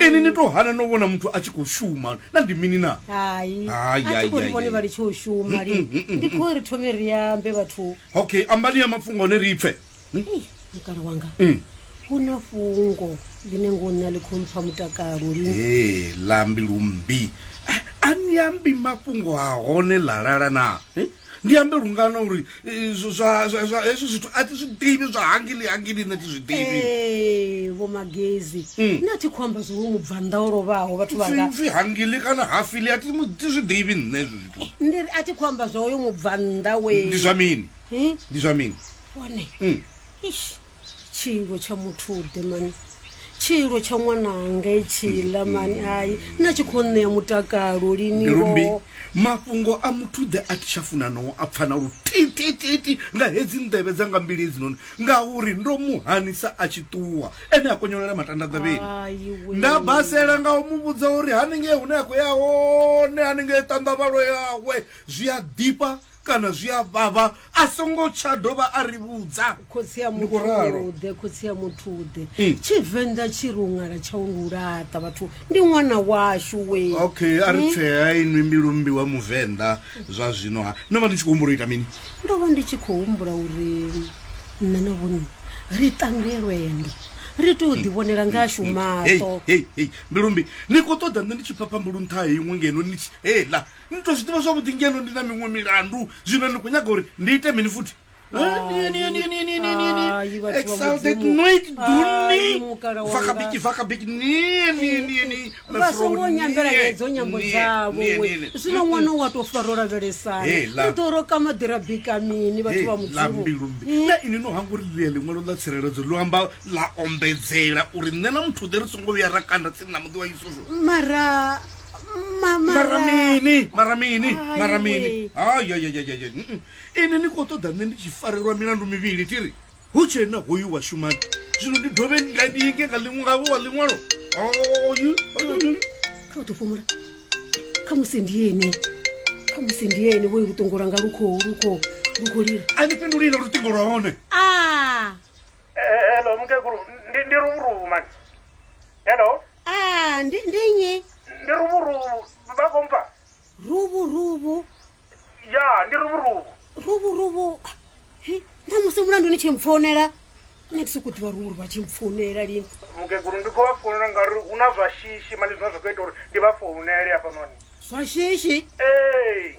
ini ni to hana no vhona muthu a tshi khou shuma na ndi mini na hai Hai, hai, a tshi hai, vhone hai. vha litshe u shuma li ndi khou ri thome ri ambe vhathu okay ambani ya mafhungo one ri pfe Ei, mukala wanga Mm. hu na fhungo ḽine ngo nṋa ḽi khou mpfa mutakalo lini ee lambi lumbi A- a ni ambi mafhungo a hone lalala na Eh, ndi ambe lungana uri hezwo zwithu a ti zwi ḓivi zwa hangili hangili nṋe ti zwi ḓivi vho magezi hmm. nṋe a thi khou amba zwo mu bvannḓa o lovhaho vhathu vhangapfi hangili kana hafili a ti zwi ḓivi nṋe hezwo zwithu ndi a thi khou amba zwa oyo mu bvannḓa we ndi zwa mini ndi zwa mini one hmm. ish tshiilwo tsha muthuḓe mani tshiilwo tsha ṅwananga itshiḽa mani hai nna tshi khou ṋea mutakalo liniombi mafhungo a muthuḓe a thi tsha funa no a pfana lu titititi nga hedzi nḓevhe dza nga mbili hedzi noni ngauri ndo mu hanisa a tshi ṱuwa ene a konyolela matanda ḓavheni nda basela nga u mu vhudza uri haningei hune a khou ya hone haningei ṱanḓavhalo yawe zwi a ḓifha kana zwi a vhavha a songo tsha dovha a ri vhudza khotsi ya Ndi khou ralo. muthuḓe khotsi ya muthuḓe Mm. tshivenḓa tshi ri u ṅala tsha u ngu laṱa vhathu ndi ṅwana washu we okay a ri tshea inwi mbilu mmbi wa muvenḓa zwa zwino ha no vha ni tshi khou humbula u ita mini ndo vha ndi tshi khou humbula uri nṋe na vhone ri tange lwendo ri tou ḓivhonela nga ashu maṱo hei mbilumbi ni khou ṱoḓa nṋe ndi tshi phapha mbulu nṱha ha iṅwe ngeno ni tshi hela ni to zwi ḓivha zwavhuḓi ngeno ndi na miṅwe milandu zwino ni khou nyaga uri ndi ite mini futhi vasongo nyambela hedzo nyambo dzavo zwino ṅwana wa to faro lavhelesana to roka maḓira bika mini vhathu vha mudzimu na ini no hanga uri ḽia ḽiṅwalo ḽa tsireledzo ḽo amba ḽa ombedzela uri nṋe na muthu ḓe ri songo vhuya ra kanda tsini na muḓi wa isusu mara mara mini mara mini mara mini ayayayayaya ini ni khou ṱoḓa nṋe ndi tshi farelwa milandu mivhili tiri hu tshe na hoyu wa shumani zwino ndi dovhe nga ndi yenge nga ḽiṅwe ngavho wa ḽiṅwalo oyu kha u ḓo fhumula kha musi ndi ene kha musi ndi ene vhoyu luṱongo lwanga lu khou lu khou lu khou lila a ni fhindulile luṱingo lwa hone a hello mukegulu ndi ndi ruvhuruvu mani hello Ah, ndi ndi nnyi? ndi ruvhuruvhu vha khou mpfa Ruvhu ruvhu. ya ndi ruvhuruvhu Ruvhu ruvhu. Hi, na musi mulandu ni tshi mpfonela. Nṋe ndi sokou ḓivha ruvhu ruvhu a tshi mpfonela lini. mukegulu ndi khou vha founela ngauri hu na zwa shishi mani zwine zwa khou ita uri ndi vha founele hafhanoni Zwa shishi. ee